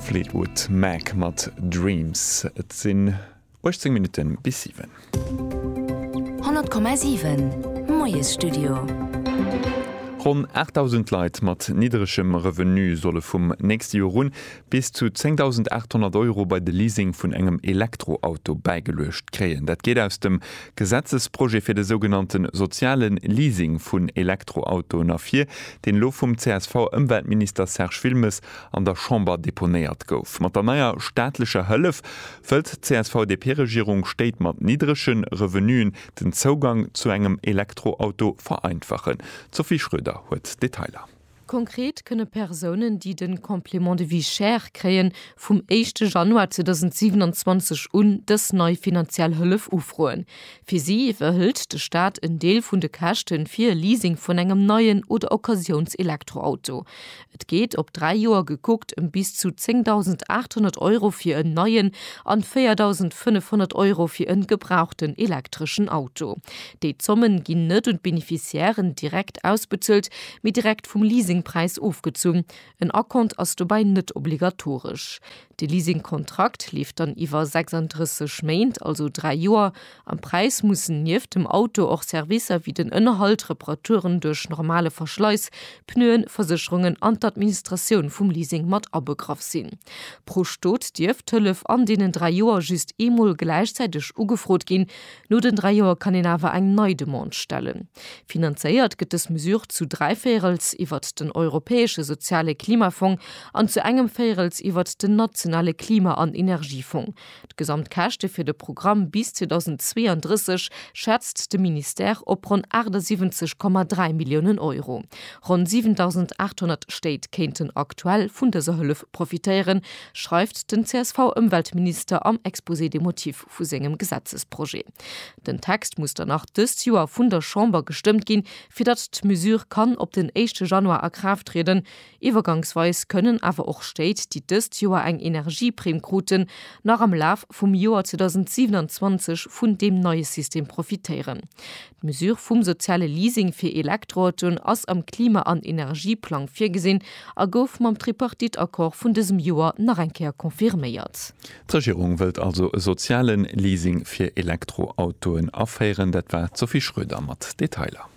Fleetwood Mac mat Dreams. Et sinn 18 Minutte bis 7. 100,7 Moiesstudio. Ronn 8.000 Leit mat nidderegem Revenu solle vum nächste Joer un bis zu 10.800 Euro bei de Leasing vun engem Elektroauto bäigeluecht kréien. Dat geet aus dem Gesetzesprojet fir de sougenannte soziale Leasing vun Elektroautoen ervir, deen elo vum CSV-Ëmweltminister Serge Wilmes an der Chamber deponéiert gouf. Mat der neier staatlecher Hëllef wëllt d'CSV-DP-Regierung Stéit mat niddrege Revenuen den Zougang zu engem Elektroauto vereinfachen. D'Sophie Schröder huet d'Detailer. Konkret kënne Persounen, déi de Complément de vie chère kréien, vum éischte Januar 2027 un dës nei finanziell Hëllef ufroen. Fir si iwwerhëlt de Staat en Deel vun de Käschte fir e Leasing vun engem neien oder Occasiouns-Elektroauto. Et geet, op dräi Joer gekuckt, ëm bis zu 10.800 Euro fir en neien an 4.500 Euro fir e gebrauchten elektreschen Auto. Déi Zommen ginn net un d'Beneficiairen direkt ausbezuelt, mee direkt vum Leasingpräis ofgezunn. En Acompte ass dobäi net obligatoresch. De Leasingkontrakt leeft dann iwwer 36 Méint, also 3 Joer. Am Präis mussen nieft dem Auto och Servicer wéi den Ënnerhalt, Reparaturen duerch normale Verschleiss, Pneuen, Versécherungen an d'Administratioun vum Leasing mat abegraff sinn. Pro Stot dierf d'Hëllef an deenen 3 Joer just eemol gläichzäiteg ugefrot ginn, No den dräi Joer kann een awer eng nei Demande stellen. Finanzéiert gëtt dës Mesure zu dräi Véirels iwwert den Europäesche Soziale Klimafong an zu engem Véirels iwwert den nationale Klima an Energiefong. D'gesamt Käschte fir de Programm bis 2032 schätzt de Ministère op ronn 78,3 Milliounen Euro. Ronn 7.800 Stéit kéinten aktuell vun dëser Hëllef profitéieren, schreift den CSV-Ëmweltminister am Exposé des motifs. vu sengem Gesetzesprojet. Den Text muss dann nach dëst Joer vun der Chamber gestëmmt ginn, fir datt d'Mesure kann op den éischte Januar a Kraaft trieden. Iwwergangsweis kënnen awer och Stéit, déi dëst Joer eng Energieprimm kruten, nach am Laf vum Joer 2027 vun deem neie System profitéieren. D'Mesure vum soziale Leasing fir Elektroautoen ass am Klima an Energieplang virgesinn a gouf mam Tripartite-Accord vun dësem Joer nach eng Kéier confirméiert. D'Regierung wëllt also e soziale Leasing fir Elektroautoen aféieren. Dat war d'Sophie Schröder mat Detailer.